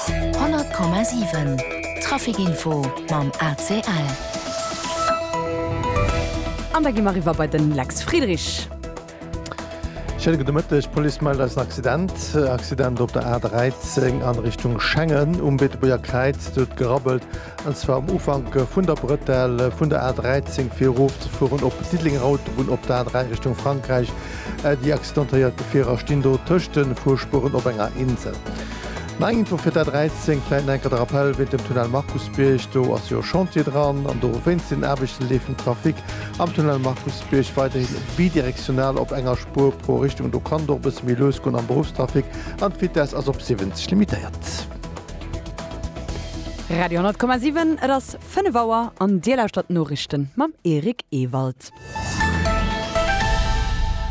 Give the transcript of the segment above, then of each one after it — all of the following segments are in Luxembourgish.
100,7 Trafic info mam ACL. An da gi mer eriwwer bei den Lex Friedrich. Schéine gudde Mëtteg. D'Police mellt eis en Accident. Accident op der A13 a Richtung Schengen um Beetebuerger Kräiz. Do huet gerabbelt. an zwar um Ufank vun der Bretelle vun der A13 fir erof ze fueren op d'Diddelenger Autobunn op der A3 Richtung Frankräich. Déi accidentéiert Gefierer stinn do tëscht de Fuerspueren op enger Insel. Nei Info fir d'A13, vläit nach eng Kéier de Rappell wéint dem Tunnel Markusbierg, do ass jo Chantier dran an dowéinst den Aarbechten leeft den Trafic am Tunnel Markusbierg weiderhin bidirektional op enger Spuer pro Richtung. Do kann et och e bësse méi lues goen am Beruffstrafic an d'Vitess ass op 70 limitéiert. Radio 10,7, et ass 5 Auer an Dir lauschtert d'Noriichten mam Eric Ewald.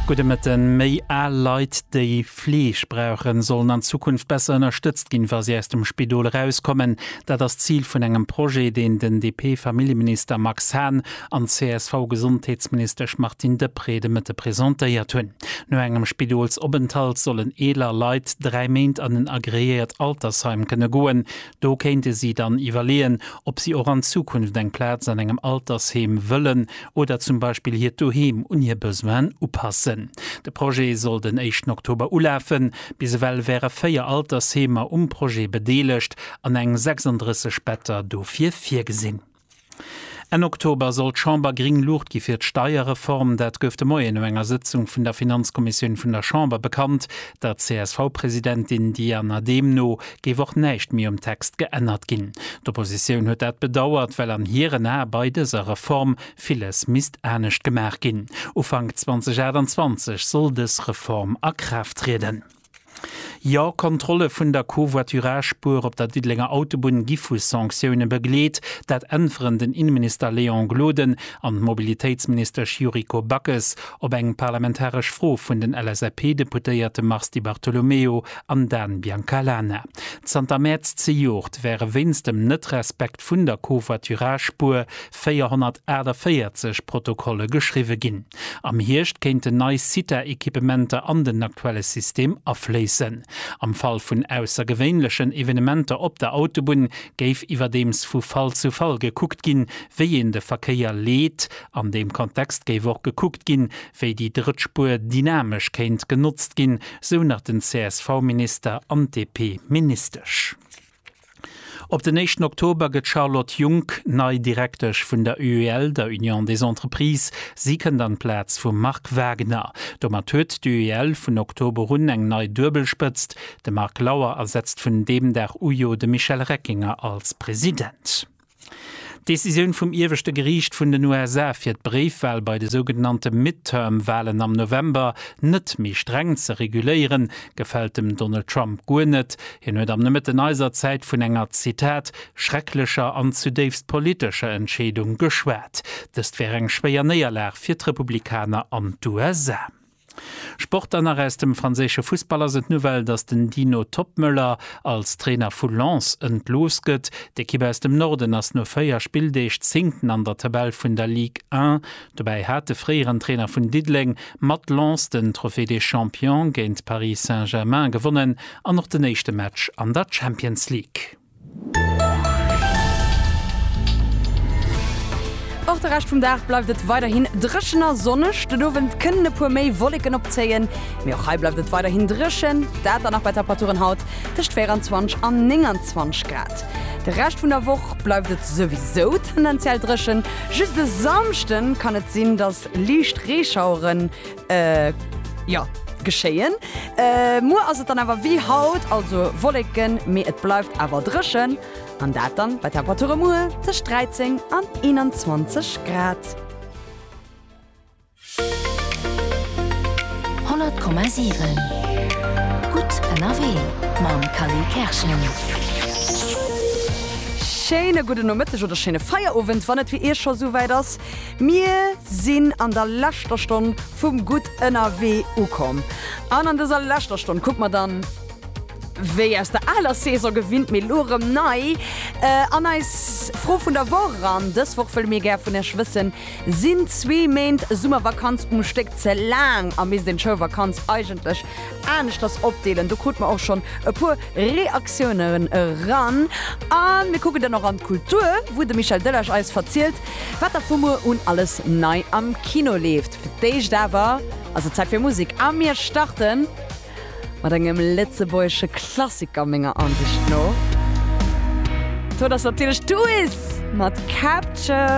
Gudde Mëtten, Méi al Leit, déi Fleeg brauchen, sollen an Zukunft besser ënnerstëtzt ginn, wa si aus dem Spidol erauskommen. Dat ass d'Zil vun engem Projet, deen den DP-Familljeminister Max Hahn an d'CSV-Gesondheetsministesch Martine Deprez de Mëtte presentéiert hunn. No engem Spidolsopenthalt sollen eeler Leit dräi Méint an en agreéiert Altersheim kënne goen. Do kéinte si dann iwwerleeën, ob si och an Zukunft eng Plaz an engem Altersheem wëllen oder zum Beispill hiert Doheem un hir Besoinen upassen. De Projet soll den éischten Oktober ulafen. Bis ewell wäre véier Altersheemer um Projet bedeelegt an eng 36 Better dofir virgesinn. Enn Oktober soll d'Chamber gring Luucht gi fir d'Steierreform. Dat gouf de Moien no enger Sëtzung vun der Finanzkommissioun vun der Chamber bekannt. Der CSV-Presidentin Diana Dehm no géif och näischt méi um Text geännert ginn. D'Oppositioun huet dat bedauert, well an hiren Ae bei dëser Reform villes misst anescht gemaach ginn. Ufank 2028 soll dës Reform a Kraaft trieden. Jo, Kontrolle vun der Covoiturage-Spuer op der Diddelenger Autobunn gi vu Sanktioune begleet. Dat äntweren den Inneminister Léon Gloden an d'Mobilitéitsministesch Yuriko Backes op eng parlamentaresch Fro vun den LSAP-Deputéierte Mars Di Bartolomeo an Dan Biancalana. Zanter Mäerz zejoert wäre wéinst dem Net-Respekt vun der Covoiturage-Spuer 448 Protokolle geschriwwe ginn. Am Hierscht kéinten nei CITA-Equipementer an den aktuelle System afléissen. Am Fall vun aussergewéinlechen Evenementer op der Autobunn géif iwwerdeems vu Fall zu Fall gekuckt ginn, wéi een de Verkéier leet. An deem Kontext géif och gekuckt ginn, wéi déi drëtt Spuer dynamesch kéint genotzt ginn, sou nach den CSV-Minister an d'DP-Ministesch. Op den éischten Oktober gëtt d'Charlotte Junck nei Direktesch vun der UEL, der Union des Entreprises. Si kënnt an d'Plaz vum Marc Wagner. Domat huet d'UEL vun Oktober un eng nei Duebelspëtzt. De Marc Lauer ersetzt vun deem Dag u jo de Michel Reckinger als President. D'Decisioun vum ieweschte Geriicht vun den USA, fir d'Bréifwal bei de sougenannte Midterm-Walen am November net méi streng ze reguléieren, gefält dem Donald Trump guer net. Hien huet am Nomëtten eiser Zäit vun enger, Zitat, schrecklecher an zudéifst politescher Entscheedung geschwat. Dëst wär eng schwéier Néierlag fir d'Republikaner an d'USA. Sport an nach aus dem franséische Fussball ass et Nouvelle, dass den Dino Toppmöller als Trainer vu Lens entlooss gëtt. D'Ekipp aus dem Norden ass no 4 Spilldeeg Zéngten an der Tabell vun der Ligue 1. Dobäi hat de fréieren Trainer vun Diddeleng mat Lens den Trophée des Champions géint Paris Saint-Germain gewonnen an och den éischte Match an der Champions League. Och de Rescht vum Dag bleift et weiderhin dréchen a sonneg. Den Owend kënnen e puer méi Wolleken opzéien, mee och hei bleift et weiderhin dréchen, dat dann nach bei Temperaturen haut tëscht 24 an 29 Grad. De Rescht vun der Woch bleift et souwisou tendenziell dréchen, just e Samschden kann et sinn, dass liicht Reeschaueren Äh, ja, geschéien. Äh, muer ass et dann awer wéi haut, also Wolleken, mee et bleift awer dréchen. An dat dann bei Temperature muer tëscht 13 an 21 Grad. 100,7 Gutt ënnerwee mam Calais Kerschen. Schéine gudden Nomëtteg oder schéine Feierowend, wann et fir Iech scho souwäit ass. Mir sinn an der leschter Stonn vum Gutt ënnerwee ukomm an an dëser leschter Stonn kucke mer dann, wéi aus der aler Saison gewinnt, mee elo erëm nei, an eis Fro vun der Woch eran. Dës Woch wëlle mir gär vun iech wëssen, Sinn zwee Méint Summervakanz um Stéck ze laang a misst een d'Schoulvakanz eigentlech aneschters opdeelen? Do krute mer och schonn e puer Reaktiounen eran. A mir kucken dann och an d'Kultur, wou de Michel Delage eis verzielt, Wat da vu muer un alles nei am Kino leeft. Fir d'éischt awer ass et Zäit fir Musek a mir starte mat engem lëtzebuergesche Klassiker, menger Ansicht no. D'Wuert ass natierlech d'Uis mat Capture.